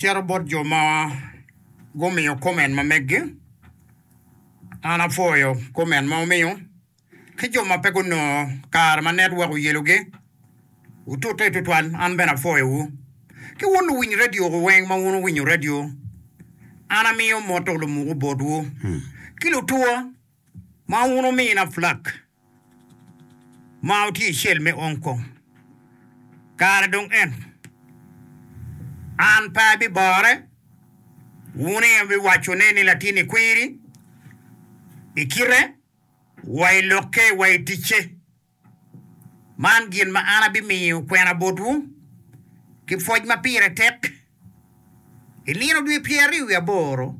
Cito bot jo ma gumiyo comment ma meggi, an apwoyo comment ma wumiyo. Ki jo ma pe gunongo kare ma network oyelogi, wutute tutwal an bene apwoyowu. Ki wun luwiny radio ku weng ma wun wuwinyo radio, an amiyo moto lumoku botwu. Ki lutwo. Ma wun omina Flak ma wutye i cel me Hong Kong, kare dong ento. An pe abibore, wun aye wubiwacone ni latinni kwiri, i kite wa i lokke wa i ticce. Man gin ma an abimiyo kwena botwu, ki pwoc ma pire tek, I nino dwe pyeraryo wiye aboro,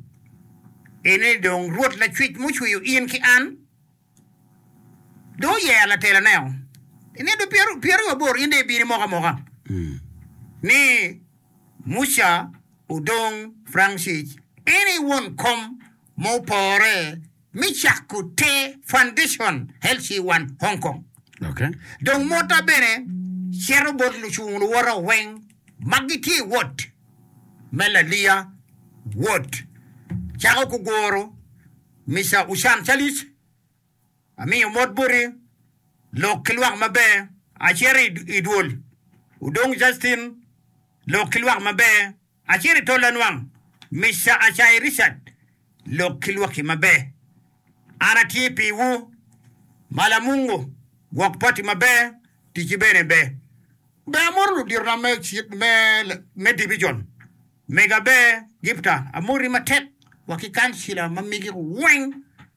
en ni dong Rwot Lacwec ma ocweyo in ki an, dong oyero lateloneo. I nino dwe pyeraryo wiye aboro in dong ibino imoka amoka ni Muca odong Francis, en aye won kom ma opore me cako te Foundation Healthy One Hong Kong. Dong motta bene cito bot lucung luwota weng ma gitye i wot me laliya, wot cako ku guru, Mister Ushan Charles, amiyo mot boti, lok ki lwak maber, acito i dwol, Udong Justin, lok ki lwak maber. Acel i tol lanwang, Mister Acayi Richard, lok ki lwakki maber. An atye piwu ma lamungu gwok pati maber, ticci bene ber. Be amoto luditona me dibijon mega ber gipta, amoti matek wa ki kancila ma migi weng.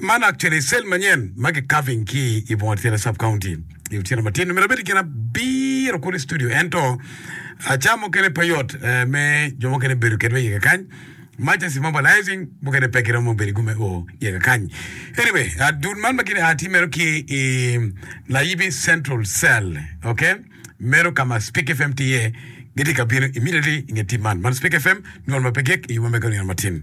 Man actually i cell manyen ma ki carving ki i bunga tyene sub county i otyeno matin myero abed i kin abiro kulu i studio ento aca mukene pe yot eh, me jo mukene bedo kedwa iye kakany much as i mobilizing mukene pe giromo bedo i gume o iye kakany anyway ah, dul man ma gini ah tye meno ki i layibi central cell ok meno ka ma speak fm tye iye gitye ka bino immediately i nge tim man man speak fm nywol ma pe gik i yuma me ka nino matin